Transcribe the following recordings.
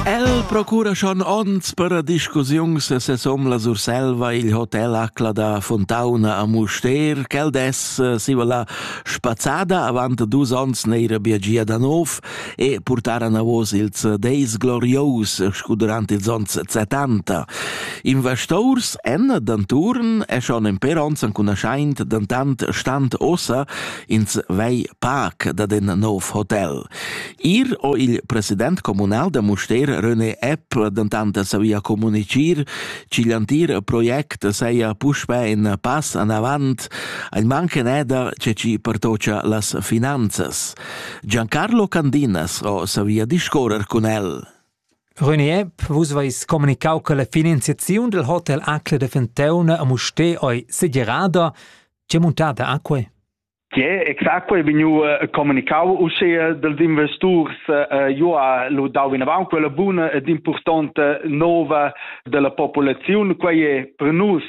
El procura schon ons per a discussiuns e sesom la Surselva il hotel acla da Fontauna a Muster, quel des eh, si va la spazzada avant dus ons neira biagia da nov e portara navos ils deis glorios scu durant ils ons 70. Investors en d'anturn e schon en per ons an cunaschaint dentant stand ossa ins vei pac da den nov hotel. Ir ho il president communal da Mustér René Epp dentant savia communitgir ch'igl antir project saja puspè in pass anavant, ein manchen eda che ci pertocha las finanzas. Giancarlo Candinas ho savia discorrer cun el. René Epp, vus vais comunicau che la finanziaziun del Hotel Acla de Fentauna a Musté ei segerada. Che muntada ha quei? Tge exact è vegniu eh, communicau uschia dels investurs eh, jeu ha lu dau vinavant quella buna ed importante nova della populazione quei è per nus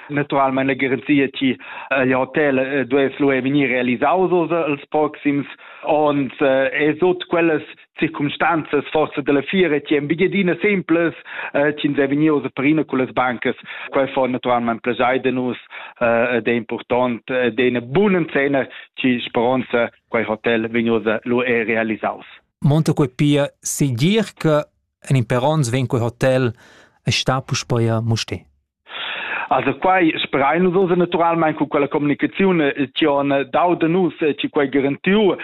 naturalmente la garanzia che eh, il hotel eh, deve vegnir realisados els proxims onns e eh, sot quellas circumstanzas forza della fiera ti en bigiadina simples eh, ti sei vegnius per ina con las bancas quei fa naturalmente plesai de nus eh, ed è important eh, de una buona cena ci speranza quei hotel vegnius lu è realisaus Monte quei pia sigir che en imperons ven quei hotel e sta puspei a Musti Also quai sperain nus ossa naturalmaing cu quella comunicaziun tion dau da nus chi quai garantiu.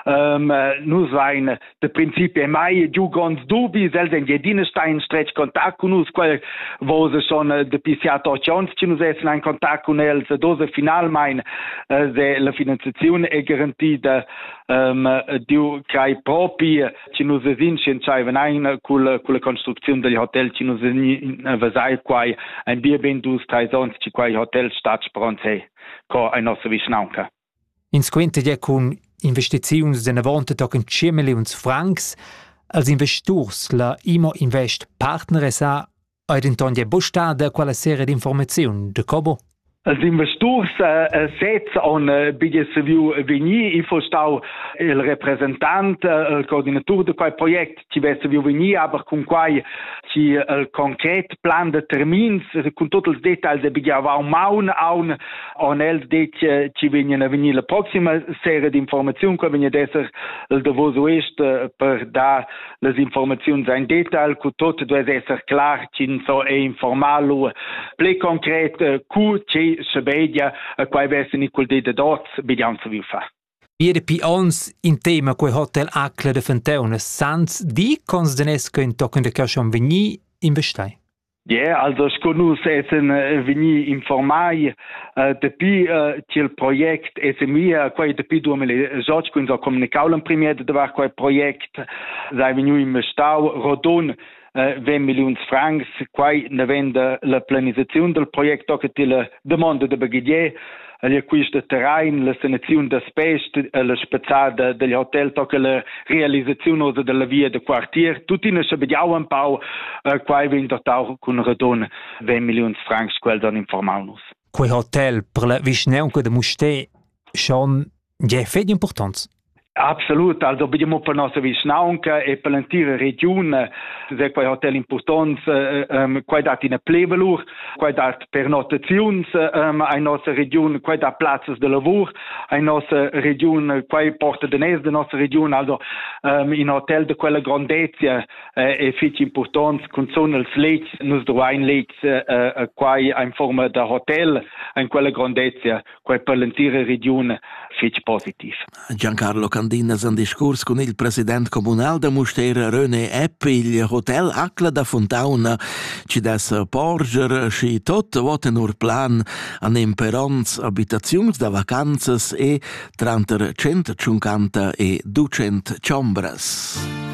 Um, nus vain da principi mai giu gronds dubis, els en Gedina sta in stretg contact cun nus, quai vosa son de PCA Torchions, ci nus essen in contact cun els, dosa finalmain se la finanziazione è garantita um, diu crai propi chi nus vesin scientschaivan aina culla, culla construcziun dal hotel chi nus vesin vesai quai ein bia ben dus treis ons chi quai hotel stat sprons he co ein nossa vischnaunca. In squinter ja cun investiziuns d'enavonte tochen 5 milliuns francs als investurs la Imo Invest partner sa Ei denton gie buc stada quella seria d'informaziun de Cobo? Els investurs eh, sez han eh, bigliet saviu vegnir, il fostau il representant, eh, il coordinatur de quei project, chi vess saviu vegnir, aber cun quai chi il concret plan de termins, cun tot ils details de bigliavau maun aun, han els det chi vegnen a vegnir la proxima serie d'informaziun, che vegn ad esser il davos oest per dar las informaziuns ein detail cu tot duess esser clar ch'ins so ei informal u pli concret eh, cu che sebedia eh, quai vessen i cul di de dots bidian so vi fa Ieri pi ons in tema quei hotel Acla de Fenteunes sans di cons denesco in tochen de caschon vegni investai. Yeah, also sco nus essen eh, vegni informai uh, dapi uh, ch'il project è semia quei dapi 2018 kun so comunicau l'em premier da var quei project sei vegnu investau rodon uh, 20 millions francs quai ne venda la planisazione del project che til demanda da baghier el quista terrain la sanaziun da spest e la spazzada del hotel tocca la realisaziun osa della via da quartier tuttina schabegiau un pau eh, quai vegn dotau cun radon 20 milliuns francs quels han informau nus Quei hotel per la vischnaunca de Musté schon Tgei fetg impurtonts. Absolut, also abbiamo per nostra vischnaunca e per l'entira regione se quei hotel impurtons, eh, ähm, quei dat ina plevelur, quei dat per notaziuns ähm, ai nostra region, quei dà plazzas de lavur ai nostra region, quei porta de nes de nostra region, also ähm, in hotel de quella grandezia eh, è fitg impurtons, cun son els lets, nus duain lets eh, eh, quai in forma da hotel in quella grandezia, quai per l'entira regiun fitg positiv. Giancarlo Candinas en discurs cun il president communal da Mustér René Epp, il hotel Acla da Fontauna, ci dess porger și tot voten ur plan an imperonts abitaziuns da vacanzas e tranter 150 e 200 chombras.